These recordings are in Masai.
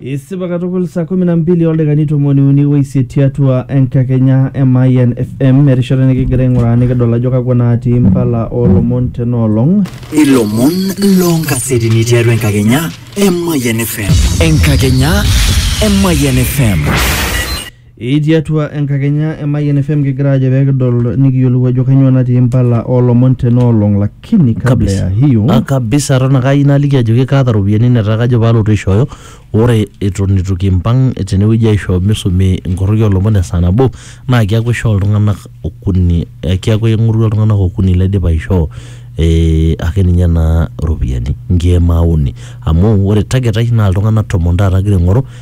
isipa katukul saa kumi na mbili oldakikani tomoni uni oisiet tiatua enkakenya e Mayian FM erishata nikigira aing'uraa nikidol ajo kakwa naatii impala oolomon tenaolong ilomon loonkasetini tiatua enkakenya e Mayian FM. Enkakenya e Mayian FM. Etii atua enkakenya e Mayian FM kigira ajo pee kidol nikiyiolou ajo kanyoo natii impala oolomon tena olong lakini kabla Kabisa. ya hiyo Ah, kabisa eton ake ayieu naliki ajoki kaata iropiyiani netaa kajo paalotu aishooyo ore eton eitu kimpang tenewueji aishoo misumi inkorroki oolomon esaa nabo naa keeku ishoo iltung'anak okuni eh, keeku aing'orua iltung'anak okuni laidipa aishoo eh, ake ninye naa iropiyiani nkeek maauni amu ore target ai naa iltung'anak tomon taata agira aing'oru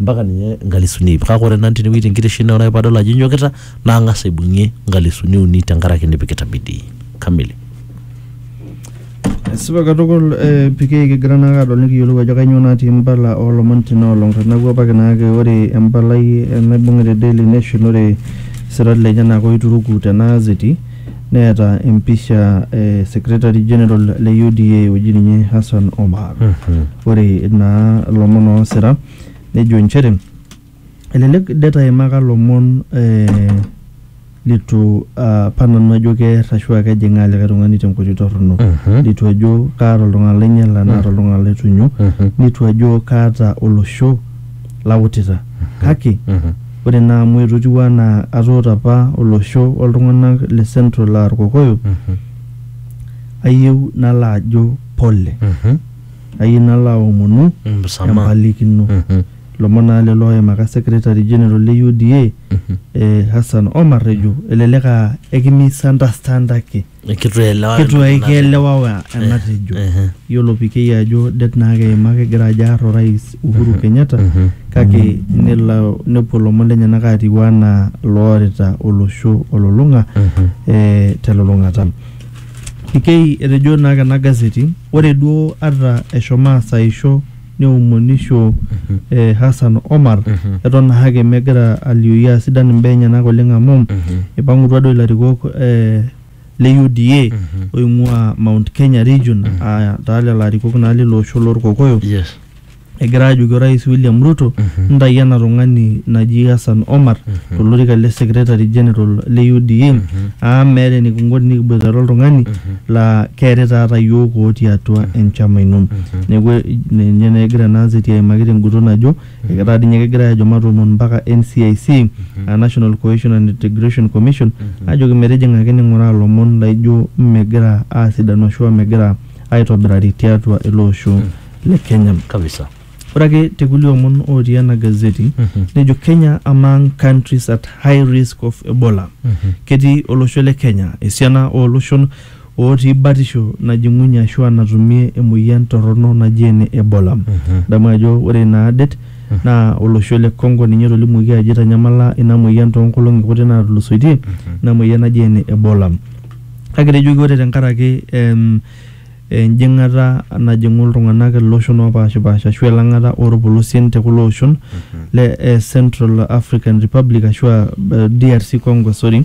mpaka ninye nkalisuni iip kake ore nanu tenewueji tenkitisho ino ore padol ajo inyokita nang'as aibung'ie nkalisuni uni tenkaraki nipikita bidii kamili Esipa katukul eh, PK kigira naake adol nikiyiolou ajo kainyoo natii imbala oolomon tina olong teneeku apake naake ore empalai eh, naibung'ita e Daily Nation ore isirat lenyenak oituruku tena azeti neeta empisha e secretary general le UDA oji ninye Hassan Omar. Ore naa lomon oosira nejo inchere elelek det aimaka lomon eh, litu ah, apa nanu ajo keer ashu aa kejing'aa likae tung'ani tenkoitoi torrono. Litu ajo kaata oltung'ani lainyala naata oltung'ani laitunyo. Nitu ajo kaata olosho lautita. Kake Ore naa amu etotiuo anaa atoota apa olosho o ltung'ana le Central aa Ilkokoyo, ayieu nalo ajo pole. Ayieu nalo aomonu empalikino. Ilomon naa lelo ooimaka Secretary General le UDA, Hassan Omar ejo elelek aa ekimisunderstandaki. Kitu elewa. kitu ai kielewawa enatejo Ehe. yiolo pikei ajo det naa keima kegira ajo aar orais Uhuru Kenyatta Mhm. kake nelo nepuo lomon lenyenak atiu anaa loorita olosho olulung'a Mhm. eh, telulung'ata pikei etejo naake ena gazeti ore duo ata eshomo asaisho neomonisho e Hassan Omar eton ahake megira alioyu aa sidan imbaa enyenak oleng amu eipang'utua duo ilarikok e le UDA oing'ua Mount Kenya region aa taa lelo arikok naa lilo osho lorkokoyo Yes. egira aajoki orais William Ruto ntayu ena tung'ani naji Hassan Omar tolorika le secretary general le UDA amu meeta enikinko tenikiboitare oltung'ani laa keetae taata iyiook otii atua enchama ino. Neeku eh, ninye naa egira ena anzeti aimaki tenguton ajo eketaa dii ninye kegirae aajo matoomon mpaka NCIC aa National Cohesion and Integration Commission aajoki metijing'aki ning'uraa ilomon laaijo megira aasidanu ashua megira aaitobirari tiatua ele osho le Kenya. kabisa. Ore ake te kulie omon ootii ena gazeti nejo Kenya among countries at high risk of Ebola. Ketii olosho le Kenya esiana oo loshon ootii batisho najing'unye ashua natumie emoyian torrono naji ene Ebola. Idamu ajo ore ina det naa olosho le Congo ninye etolimuoki ajo eitanyamala ina moyian too nkolong'i kuti naatulusoitie ina moyian naji ene Ebola. Kake etejoki ore tenkaraki enjing'ata najing'u iltung'anak iloshon oopaashipaasha ashu elang'ata oorpolosien te kulo oshon le eh, Central African Republic ashu aa eh, DRC Congo sorry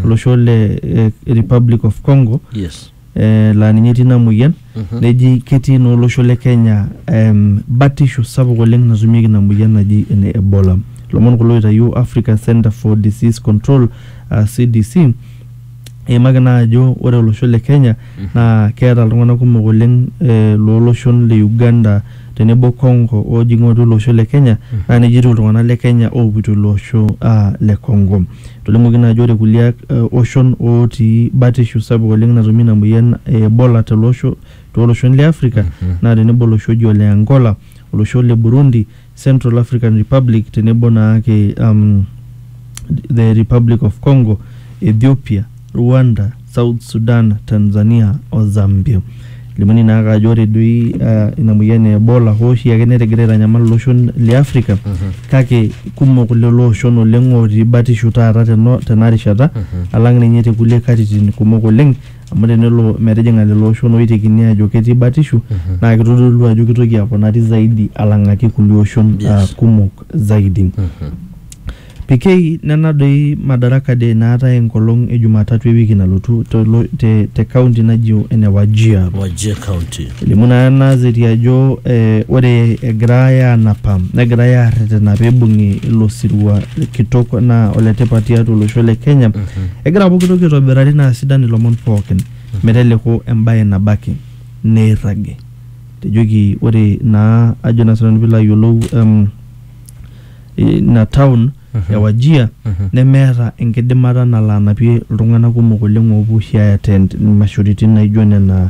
olosho le eh, Republic of Congo yes eh, laa ninye etii ina moyian neji ketii naa olosho le Kenya em, batisho sapuk oleng natumieki ina moyian naji ene Ebola. Ilomon kulo oitayio Africa Center for Disease Control aa CDC Eimaki naa ajo ore olosho le Kenya naa keeta iltung'anak kumok oleng eh, looloshon le Uganda tenebo Congo oojing'u atua ilo osho le Kenya naa nejia etiu iltung'anak le Kenya oopuito ilo osho ah, le Congo. Etolimuoki naa ajo ore kulie eh, oshon ootii batishu sapuk oleng natumie ina moyian e Ebola tele osho tooloshon le Africa naa tenebo olosho oji ole Angola, olosho le Burundi, Central African Republic tenebo naake um, the Republic of Congo, Ethiopia, Rwanda, South Sudan, Tanzania o Zambia. Limuni naake ajo ore doi uh, ina moyian e Ebola hoo oshi ake netegira aitanyamal iloshon le Afrika kake kumok lelo oshon oleng ootii batisho taata teno- tena rishata alang ninye te kulie katitin kumok oleng Amu tenelo metijing'a lelo oshon ooitekini aajo ketii batishu naa keitodolu ajo keitoki aponari zaidi alang'aki kulie oshon Yes. aa kumok zaidi. PK, nena doi Madaraka Day naatae enkolong e Jumatatu e wiki nalotu te lo- te te kaunti naji ene Wajir. Wajir County. Elimu naa ena zeti ajo eh, ore egirae aanapa negirae aarretena peibung'i ilo sirua kitok naa oletipat tiatua olosho le Kenya. Egira pooki toki aitobirari naa sidan ilomon pookin meteleku embae nabo ake neirragi. Etejoki ore naa ajo naa sinanu piilo ayiolou em, ina town e Wajir nemeeta enkidimata nalo anapie iltung'anak kumok oleng oopuo oshi ae attend imashoritin naijo nena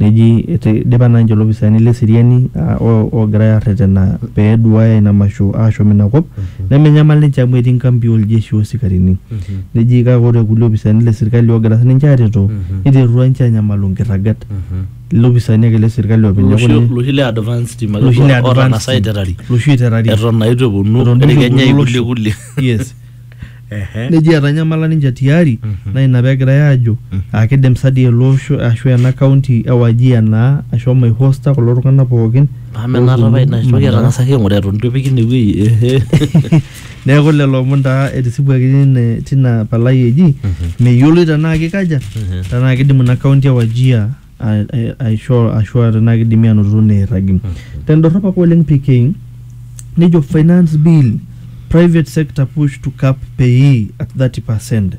Neji eidipa naa ninche ilopisaani le seriani oogirai aarretena pee eduaaya ina masho aashom ina kop nemenyamal ninche amu etii nkampi oo ljeshi o sikarini. Neji kake ore kulie opisaani le serkali oogira sininche aareto neiterutua ninche aanyamalu nkirragat. Ilopisaani ake le serkali oopeny neeku ninye. Loshi le advance team ake duo ootang'asa aiterari eton naa eitu eponu etii kenya kulie. Ehe. neji etanyamala ninche tiari Mhm. naa ina pegirai aajo Mhm. aa kidim sa dii ele osho ashu ena kaunti e Wajir naa ashomo aihosta kulo tung'anak pookin Amu ena ooponu tapai ina toki Mandera. etang'asaki aing'ura eton itu epiki ine wueji. Ehe. neeku lelo omon taa etisipuaki tine tina palai eji Mhm. meyioloi tenaa kikaja Mhm. tenaa kidim ina kaunti e Wajir aishoo ashu aa tenaa kidimi aanoto neirragi. Tendorrop ake oleng PK nejo finance bill, private sector push to cap payee at 30 per cent.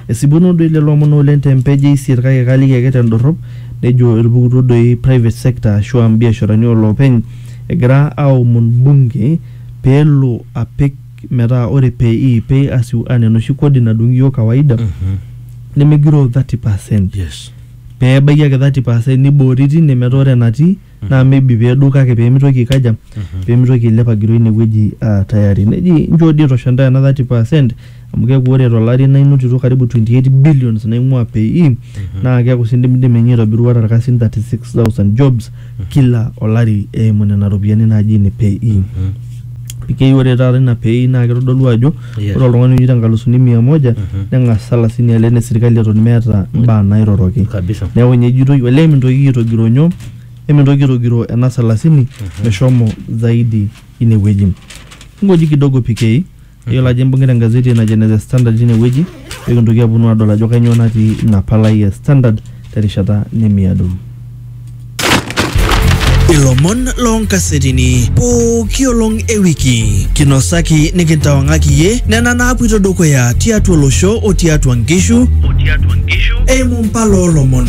Esipuno doi lelo omon oleng te mpeej e isiet kake kaaliki ake tendorrop nejo etupukutuo doi private sector ashu aa mbiasharani oo loopeny egira aaomon bunge pee elo apik metaa ore payee, pay as you earn, enoshi kodi nadung iyiook kawaida nemegiroo 30 per cent. pee ebaiki ake 30 percent niboori tine metaa ore enatii naa maybe pee edou kake pee mitoki aikaja pee mitoki ailep agiroo ine wueji aa tayari. Neji inchoo dii itosha intae ena 30 percent amu keeku ore to lari naa inotito karibu 28 billions naing'ua PAYE naa keeku sii indimidimi ninye aitobiru ata irkasin 36,000 jobs. kila olari eimu nena ropiyiani naaji ine pay in keyieu ore taata ina pei naa kitodolu ajo Yes. ore oltung'ani oyieu tenkalusuni mia moja neng'as salasini ale ene sirkali eton meeta imbaa nairoroki kabisa neeku ninye ejitoi olee mintoki aitogiro nyoo emintoki aitogiro ena salasini meshomo zaidi inewueji ngoji kidogo PK Iyiolo ajo imbung'ita engazeti najo ene The Standard tine wueji pee kintoki aponu adol ajo kainyoo natii ina palai e Standard terishata nemiado. Ilomon loonkasetini pooki olong e wiki kinosaki nikintawang'aki iyie nena naapuito dukuya tiatua olosho o tiatua nkishu eimu mpala oolomon.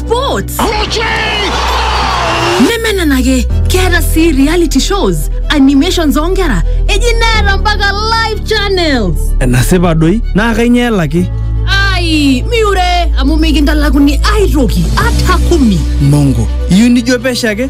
sports nemenenake keeta sii reality shows animations oonkera eji neeta mpaka live channels enasipa doi naa kainyoo elaki ai miure amu mikintalakuni aitoki ata kumi mongo iyieu nijo pesho ake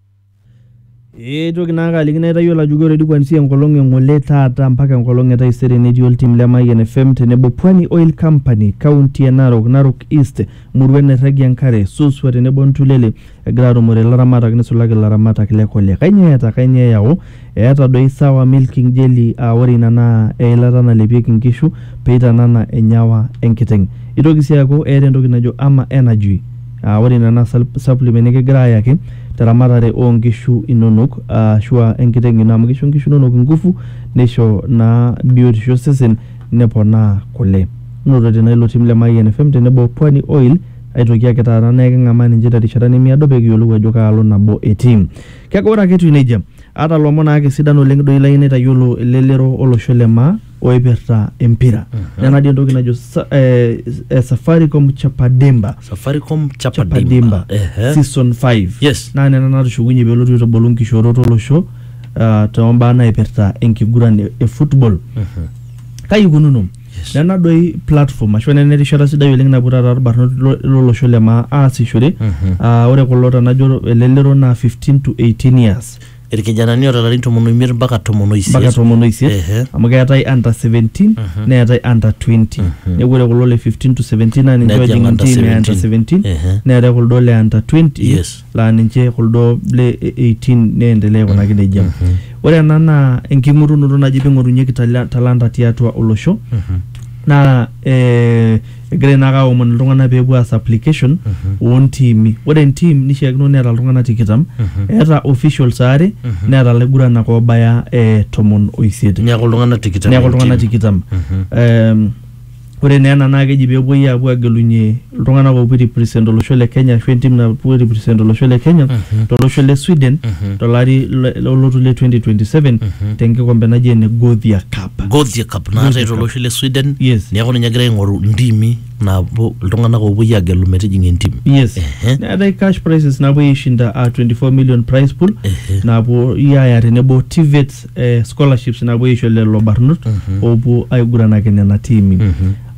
Eitoki naake aliki naitayiolo ajoki ore di kuanzia enkolong e ng'ole taata mpaka enkolong e taisere netii oltim le Mayian FM tenebo Pwani Oil Company, kaunti e Narok, Narok East, muruan nairragie enkare, Suswa tenebo Ntulele egira atumore ilaramatak nisulaki ilaramatak le kule. Kainyoo eeta? Kainyoo eyau? Eeta doi sawa milking jelly aa ore ina naa eilata nalepieki nkishu peitanana enyawa enkiteng. Eitoki sii aaku eeta entoki najo ama energy aa ore ina naa supplement nikigira ayaki te ramatare oo nkishu inonok aashu aa enkiteng ino amu keisho nkishu inonok ngufu neisho naa biotisho osesen neponaa kule. Notote naa ilo tim le Mayian FM tenebo o Pwani Oil aitoki ake taata naa eking'amaa ninche te rishata nemiado pee kiyiolou ajo kaalo nabo etii. Kake ore ake etiu nejia, aata lomon ake sidan oleng doi layieu naitayiolo elelero olosho le maa oipirta empira. Nena dii entoki najo sa, eh, eh, Safaricom Chapademba. Safaricom Chapadimba. Chapademba Ehe. season 5 Yes. naa nena natushukunye pelotu aitubulu nkishoorot olosho uh, tombaa naipirta enkiguran e, e football kai ikununo Yes. nena doi platform ashu nena erishata sidai oleng napuo taata irbarnot lo- lolosho le maa aasishore Mhm. Ah, ore kulo tenajo elelero naa 15 to 18 years irkijanani oota larin tomon oimiet mpaka tomon oisiet mpaka tomon oisiet Ehe. amu keetae under 17 neetae under 20 neeku ore kulo le 15 to 17 naa ninche Nejing ojing under ntimi e under 17 Ehe. neetae kuldo le under 20 Yes. laa ninche kuldo le 18 neendelea aikunaki nejia. Ore ena naa enking'orunoto naji ping'orunyeki tala- talanta tiatua olosho naa eh, egirai naake aomon iltung'anak peepuo aas application ontiimi. Ore entim nishiakino neeta iltung'anak tikitam, eeta officials aare neeta ilaiguranak obaya eh, tomon oisiet. Neeku iltung'anak tikitam. Neeku iltung'anak tikitam. Em, Ore naa ena naa keji pee epuoi aapuo aagelunye iltung'anak oopuo airipresent olosho le Kenya ashu entim napuo airipresent olosho le Kenya tolosho le Sweden tolari le- olotu le 2027 tenkikombe naji ene Gothia Cup. Gothia Cup naatae Gothia Cup. tolosho le Sweden Yes. neeku ninye egira aing'oru ntimi naapuo iltung'anak oopuoi aagelu metijing'a entim. Yes. Ehe. Neetae cash prizes naapuoi aishinda aa 24 million prize pool naapuoi aaya tenebo TVETs eh, scholarships napuo aisho lelo barnot oopuo aiguranaki nena tiimi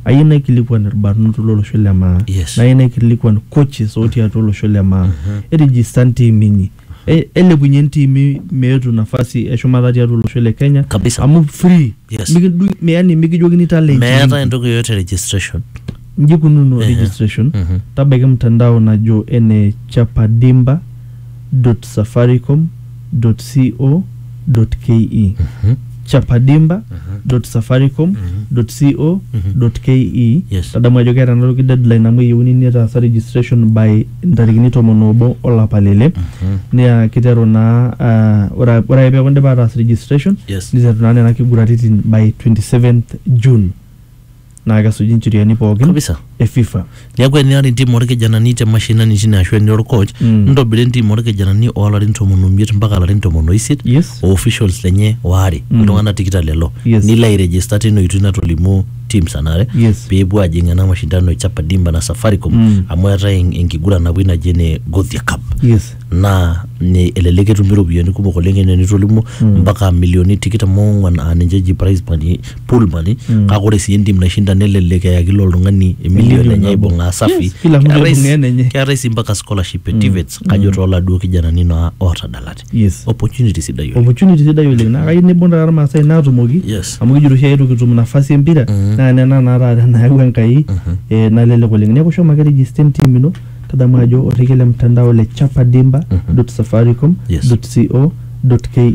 ayieu naikilikuan irbarnot lolosho le maa Yes. nayieu naikilikuan coaches otii atua olosho le maa erijista ntiimi inyi E- elepunye ntiimi meetu nafasi eshumata tiatua olosho le kenya Kabisa. amu free Yes. Mikidung- yani mikijokini talent meeta inyi. entoki yoyote registration Nji ikununo registration, tabaiki mtandao najo ene chapadimba.safaricom.co.ke, chapadimba.safaricom.co.ke, Yes. tadamu ajo keeta enatoki deadline amu eyieuni nitaasa registration by ntarikini tomon oobo olapa le ile, naa kiteru naa ah, ore ake ore ake peeku indipa ataas registration, Yes. niteru naa nena kiguraritin by 27th June. naa kesuj incheriani pookin Kabisa. e FIFA. Neeku enirara entim orkijanani te mashinani tine ashu enira orcoach, Mm. ntobira entim orkijanani oolarin tomon omiet mpaka larin tomon oisiet Yes. o officials lenye waare Mm. iltung'anak tikitam lelo Yes. nilo airegister tina oitoi natolimuo teams anare Yes. peepuo ajing ena mashindano e Chapa Dimba na Safaricom Mm. amu eetae en- enkiguran napuoi naji ene Gothia Cup Yes. naa ni- elelek etumi iropiyiani kumok oleng enaa enitolimuo Mm. mpaka milioni tikitam oong'wan aa ninche eji prize money pool money kake ore sii entim naishinda nelelek eyaki ilo oltung'ani emilion enye aibung'aa safi Yes, kila mtu Keetae aibung'aa sii- enenye. keetae sii mpaka scholarship e TVETs kajo tooladuo kijanani naa ootadalate Yes. opportunity sidai oleng opportunity sidai oleng naa kayieu nibung taata irmaasai naatumoki Yes. amu kijito oshi aetu kitum nafasi empira naa nena naa taata nayawua enkai eh, nalelek oleng neeku shomo ake register entim ino tadamu ajo orrekie le mtandao le chapadimba safaricom Yes. co ke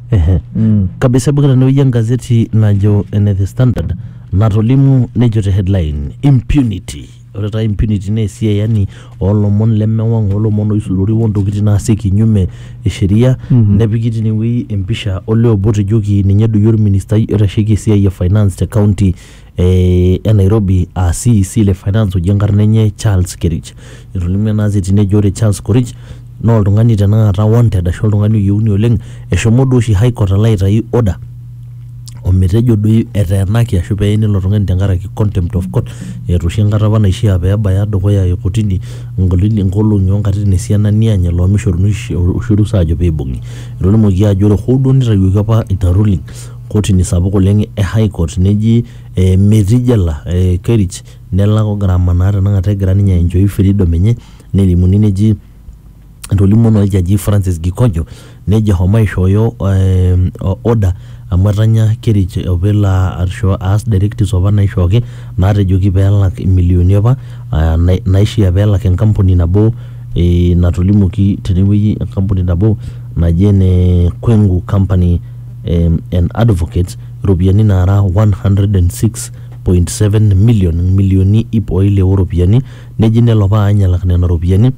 Ehe. Mm. Kabisa ibungita tenewueji engazeti najo ene The Standard natolimu nejo te headline impunity. Ore taa impunity naa esiai yani oolomon lemewang' oolomon oisurori ontokitin naasi kinyume e sheria Mhm. nepiki tinewueji empisha olee obo otejoki ninye doi olministai oitasheki esiai e finance te county e Nairobi aa CEC le finance oji enkarna enye Charles Kerich. Etolimuo ena gazeti nejo ore Charles Kerich naa oltung'ani tenakata wanted ashu oltung'ani oyieuni oleng. Eshomo duo oshi high court alo aitayu order ometejo doi eteenaki ashu peeni ilo tung'ani tenkaraki contempt of court. Eeta oshi enkata apa naishia pebaya dukuya e kotini nkolong'i o nkatitin esiana niany elo amu mishoruni oshi orusa ajo pibung'i. Etolimuoki ajo ore hoo duo nitayioki apa ina ruling Kotini sapuk oleng e High Court neji metii jela Kerich nelak gharama naa tenakata egira ninye aenjoy freedom enye nelimuni neji etolimuo naa oljaji Francis Gikojo nejo eshomo aishooyo order amu etanya Kerich opa elo aisho aas directives opa naishooki naatejoki peelak imilioni opa naishia peelak enkampuni nabo natolimuoki tenewueji enkampuni nabo naji ene Kwengu company. um, and advocates iropiyiani naara 106.7 million milioni ip o ile o ropiyiani neji nelo apa aany alak nena ropiyiani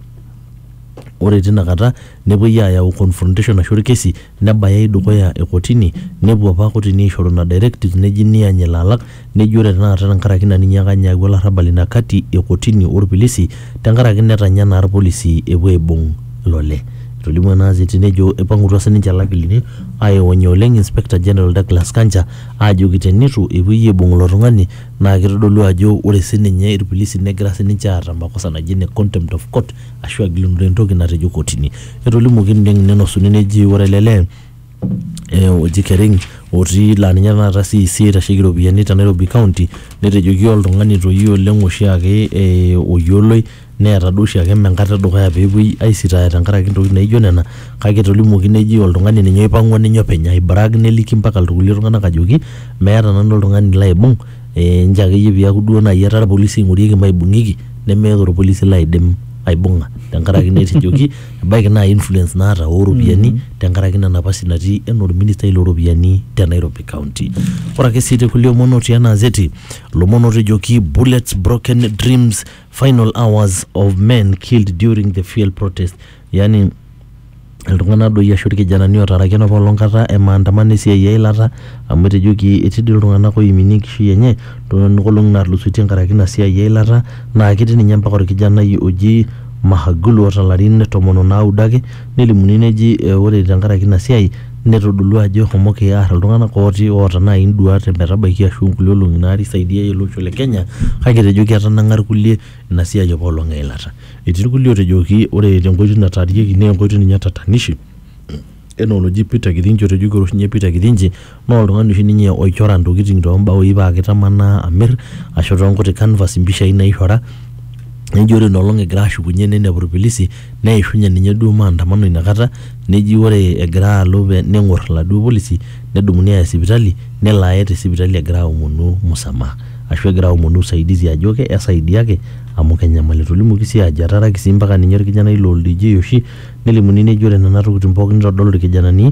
ore tina kata nepuoi aayau confrontation ashu orkesi nebayai dukuya e kotini nepuo apa kotini aishoru ina directive neji niany elo alak Nejo ore tenakata tenkaraki ina ninyiaka ninye ayau olarrabal ina kati e kotini o lpilisi tenkaraki netanya naa ilpolisi epuo aibung ilole. Etolimuo ena azeti nejo eipang'utua sininche ilakilini aionya oleng Inspector General Douglas Kanja aajoki teneitu epuoi aibung ilo tung'ani naa keitodolu ajo ore sininye ilpilisi negira sininche aata makosa naji ene contempt of court ashu agilunore entoki natejo kotini. Etolimuoki ng'inenosuni neji ore ele lee eh, oji Kering otii laa ninye taata CEC oitasheki iropiyiani te Nairobi County netejoki oltung'ani toyie oleng oshiake eh, oyioloi neeta duo oshiake mme enkata edukuya peepuoi aisitaaya tenkaraki intokitin naijo nena kake etolimuoki neji oltung'ani ninye oipang'ua ninye openy ai brag neliki mpaka irkulie tung'anak ajoki meeta nanu oltung'ani laibung eh, nchoo akeyie piaku duo naaji etaa irpolisi eing'orieki maibung'ieki nemeeta orpolisi laidim aibung'a tenkaraki netejoki ebaiki naa influence naata oropiyiani tenkaraki ina napasi natii enaa orministai looropiyiani te Nairobi County. Ore ake sii tekulie omon otii ena azeti, lomon ootejoki bullets, broken dreams, final hours of men killed during the fuel protest yani iltung'anak doi ashu irkijanani ootaraki enapa olong kata e maandamano esiai eilata amu etejoki etii doi iltung'anak oiminie enkishui enye toonena olong'i naatulusoitie enkaraki ina siai eilata naa ketii ninye mpaka orkijanai oji Mahagulu oota ilarin tomon onaudo ake Nelimuni neji ore tenkaraki ina siai netodolua ajo eshomoki aar iltung'anak ooti oota naai induat metabaiki ashu inkulie olong'i naata isaidiayie ele osho le Kenya kake etejoki etanang'a irkulie ina siai apa olong eilata. Etii irkulie ootejoki ore tenkoitoi nataarieki naa enkoitoi ninye tatanishi enaa oloji Peter Kithinji otejoki ore oshi ninye Peter Kithinji Naa oltung'ani oshi ninye oichora ntokitin too mbaoi paa kitamanaa amir ashu too nkuti canvas mpishai naichora nejo ore ina olong' egira ashukunye ninepu irpilisi neishunye ninye duo maandamano ina kata neji ore egira alo pee neng'or iladuo polisi nedumuni aaya sipitali nelo aye te sipitali egira aomonu msamaha ashu egira aomonu usaidizi ajo ke esaidiaki amu kenyamalu. Etolimuoki sii aajo etaaraki sii mpaka ninye orkijanai loo ildijii oshi nelimuni neji ore nena tokitin pookin nitodolu irkijanani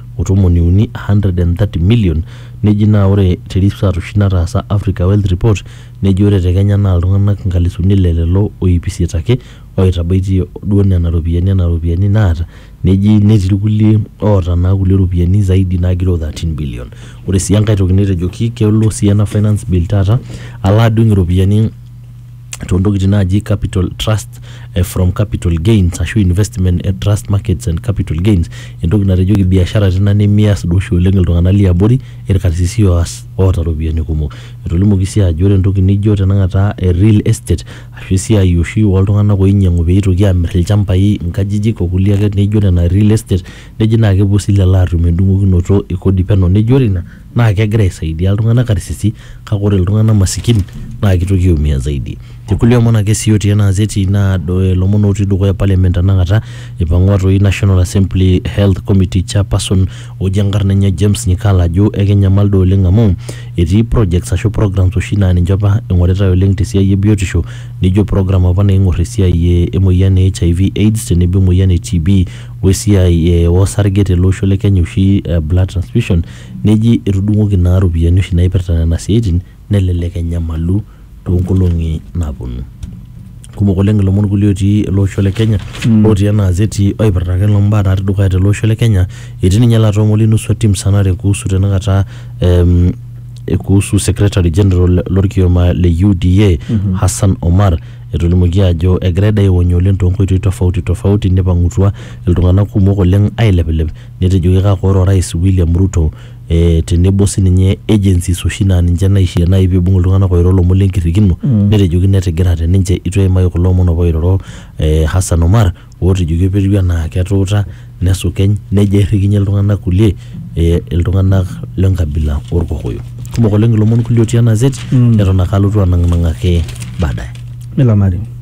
o tomoni uni, 130 million, neji naa ore te research oshi nataasa Africa Wealth Report neji ore te Kenya naa iltung'anak inkalisuni ile lelo o iip isiet ake oitabaitie duo nena ropiyiani ena ropiyiani naata neji netii irkulie oota naa kulie ropiyiani zaidi naagiroo 13 billion. Ore sii enkae toki netejoki kelo sii ena finance bill taata alo adung' iropiyiani too ntokitin naaji capital trust eh, from capital gains ashu investment eh, trust markets and capital gains entoki natejoki biashara tina nemias duo oshi oleng iltung'anak liabori irkarsisi oas oota iropiyiani kumok etolimuoki sii ajo ore entoki nijo tenakata eh, real estate ashu esiai oshi oltung'anak oinyiang'u peitoki amirr ilchambai inkajijik okulie ake neijo nena real estate neji naa kepuo sii lelo atum endung'okinoto e kodi peno neji ore ina Naa kegira aisaidia iltung'ana karsisi kake ore iltung'ana masikin naa keitoki aiumia zaidi. Te kulie omon ake sii otii ena azeti naa ilomon otii dukuya parliament tenakata eipang'ua toi National Assembly Health Committee Chairperson oji enkarna enye James Nyikala ajo ekenyamal duo oleng amu etii projects ashu programs oshi naa ninche opa eing'oritai oleng te siai e biotisho nijo program opa naing'orr esiai emoyian e HIV, Aids tenebo emoyian e TB wesiai osarge tele osho le Kenya oshi blood transfusion Neji etudung'oki naa ropiyiani oshi naipirta nena siaitin nelelek enyamalu toonkolong'i naaponu. Kumok oleng ilomon kulie otii ele osho le Kenya otii ena azeti oipirta ake mbaa natii dukuya tele osho le Kenya. Etii ninye ilo atua Muli Nusu otii musanare kuhusu tenakata ehm kuhusu secretary general lorkioma le UDA Hassan Omar etolimuoki ajo egirai dei aiwonya oleng toonkoitoi tofauti tofauti neipang'utua iltung'anak kumok oleng ailepilep netejoki kake ore orais William Ruto eh, tenebo sininye agencies oshi naa ninche naishia naaji peibung iltung'anak oiro lomon lenkirrikino netejoki netigirate ninche itu eimaki kulo omon apa oiroro eh, Hassan Omar otejoki etiu enaa ketuuta nesukeny nejo airrikinyie iltung'anak kulie eh, iltung'anak lenkabila orkokoyo kumok oleng ilomon kulie otii ena zit neton ake alotu anang'nang'aki baadaye. Nelo naleng.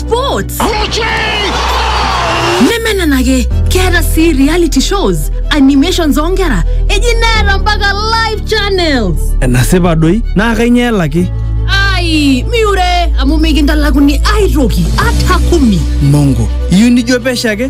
sports nemenenake keeta sii reality shows animations oonkera eji neeta mpaka live channels enasipa doi naa kainyoo elaki ai miure amu mikintalakuni aitoki ata kumi mongo iyieu nijo pesho ake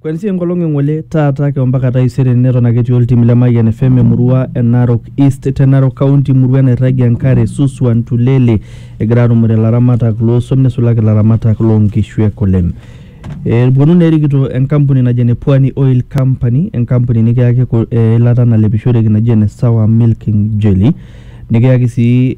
Kwanzia enkolong e ng'ole taata ake ompaka taisere neton ake etii oltim le Mayian FM emurua e Narok East te Narok County murua nairragie enkare Suswa Ntulele egira aarumore ilaramatak loosuam neisulaki ilaramatak loonkishu e kule. Epwonu naa erikito enkampuni naji ene Pwani Oil Company enkampuni nikiyaki eilata nalepishoreki naji ene Sawa Milking Jelly Nikiyaki sii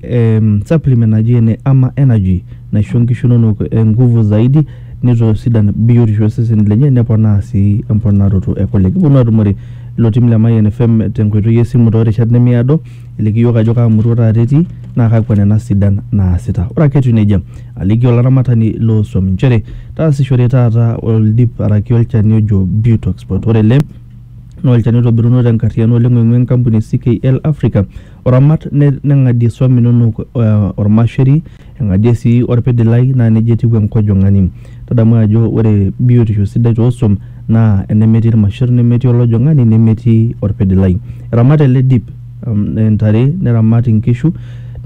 supplement naji ene ama energy naisho inkishu inonok nguvu zaidi nitosidan biotisho oo seseni lenye neponaa sii emponaroto e kule. Kiponu atumore ilo tim le Mayian FM te nkoitoi e simu too rishat nemiado iliki iyiok ajo kaa murua taata etii naa kakwa nena sidan naasita. Ore ake etiu neijia aliki olaramatani loo swam inchere taasishore taata oldip araki olchani ojo Butox. Ore ele naa olchani oitobiruno te nkarriyiano oleng oing'ua enkampuni e CKL Africa oramat neng'adie isuam inonok ormasheri eng'adie sii orpidilai naa nejia etiu enkojong'ani tadamu ajo ore biotisho sidai tosuam naa enemetii irmasherr nemetii olojong'ani nemetii orpidilai eramat ele dip intare neramat inkishu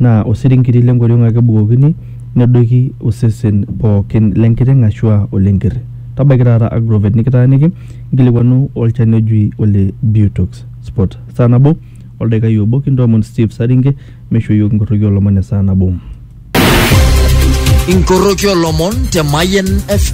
naa osiringiti lenkoriong ake ebukokini nedoiki osesen pookin lenkiteng ashua olenkerr tabaiki taata agrovet nikitaaniki. Nkilikwanu olchani ojui ole Butox Spot. Saa nabo oldaikai obo kintoomon Steve Saringe meishoo iyiook inkorroki oolomon esaa nabo. Inkoroki olomon te Mayen FM.